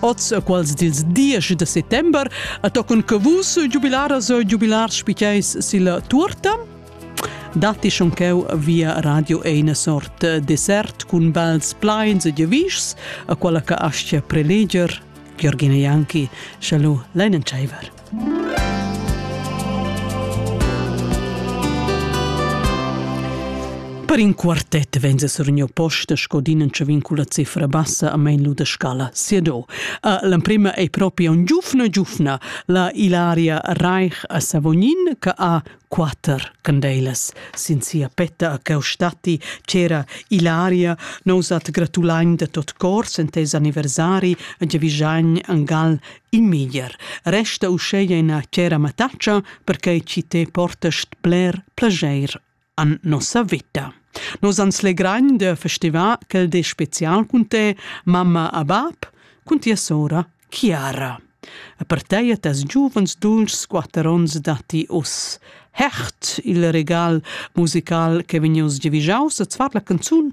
oz quals dils diesch de settember a toccun che vus giubilaras e giubilars spiceis silla tuorta datti schon cheu via radio eine sort dessert cun bels pleins e gevischs a quella che astga preleger Georgina Janki, Chalu, Leinen Scheiver. Per in quartet venza surgniu posta sco dinentscha vincula cifra bassa a mein lu da scala Siedo. L'emprema ei propi un giufna giufna, la Ilaria Reich a Savognin, che ha quater candeilas. Sin sia petta a Caustatti c'era Ilaria, nous at gratulain da tot cor sentez anniversari a Giavischagn, Angal Il meglier resta uscheia ina chera mattatscha perquai chi te portast bler plageir an nossa veta. Nos ans legrain da festivar quel de spezial cun te, mamma a bab, cun tia sora Chiara. E per te e tes giuvens dulcs quatter ons datti us. Hert il regal musical che vegnos giavigiaus a zvar la canzun